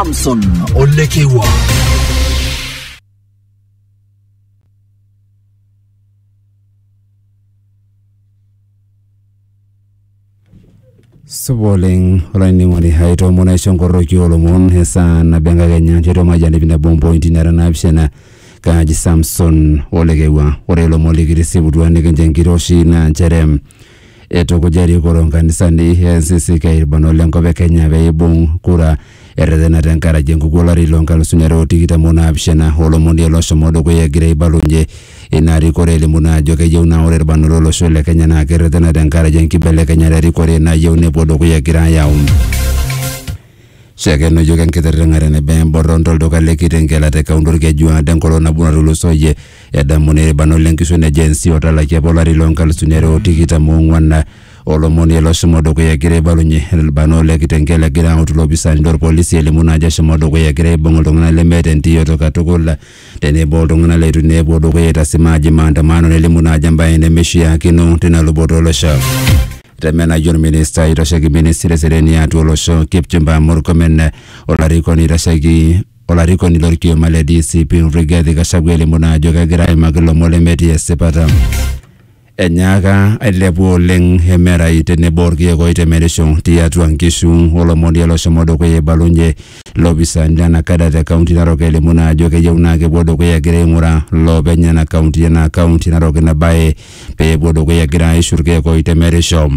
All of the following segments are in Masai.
Samson Olekewa. supa oleng olainining'oni hai toomon aisho nkorroki olomon esaa nabo enkakenya nchoto maijani pinabo mpointi nara naapishana kaaji samson olekewa ore ilomon likitisiputua nikincho enkiroshi naa nchere Eitukuja erikoo loo nkanisani e NCCK ilbarnot le nkop e Kenya pee eibung kura erretena te nkaraki enkukuo olari loo nkalusuni are o tikitam o naapishana o lomon liare loshomo dukuya egira aibalunye ina rikore elimu naa ajo keyieu naa ore ilbarnot lo losho le Kenya naa kerretena te nkaraki enkibelekenyata e rikore nayieu nepuo dukuya egira ayau Shakeno iyiook enkitiring'are eneba emborron to lduka le Kitengela te kaunti Olkeju aado enkolong nabo natulusoyie. Edamuni ilbarnot le nkishon e Gen Z otalaki apa olari loo nkalusuni are o tikitam o ong'uan. Olomoni ilo oshomo dukuya egira aibalunye ilbarnot le Kitengela egira autu ilopisaani lo lpolisi elimu naa ajo eshomo dukuya egira aibung iltung'ana lemeeta entiyoto katukul tenebo o ltung'ana leitu naa epuo dukuya aitasimaa aji maandamano nelimu naa ajo embae nemeishiakino tina luboto o losho. Temenayu olminista oitasheki ministry eseriani atua olosho Kipchumba Murkomen olarikoni oitasheki olarikoni lorkioma le DCP Rigathi Gachagua elimu naa ajo kegira aimaki ilomon lemetii esipata. Enyaaka ailepu oleng emerai tenebo orkiek oitemerisho tiatua nkishu olomoni oloshomo dukuya eibalunye lopisani lena kada te kaunti Narok elimu naa ajo keyieu naa kepuo dukuya egira aing'uraa loopeny ena kaunti ena kaunti Narok ina bae pee epuo dukuya egira aishu irkeek oitemerisho.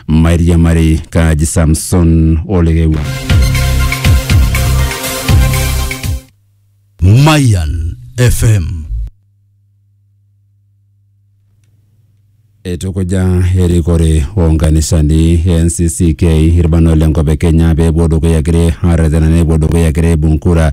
Mairiamari kaaji Samson Olekewua. Mayan FM. Eitukuja erikore oo nkanisani e NCCK irbanot le nkop e Kenya pee epuo dukuya egira aarretena nepuo dukuya egira aibung kura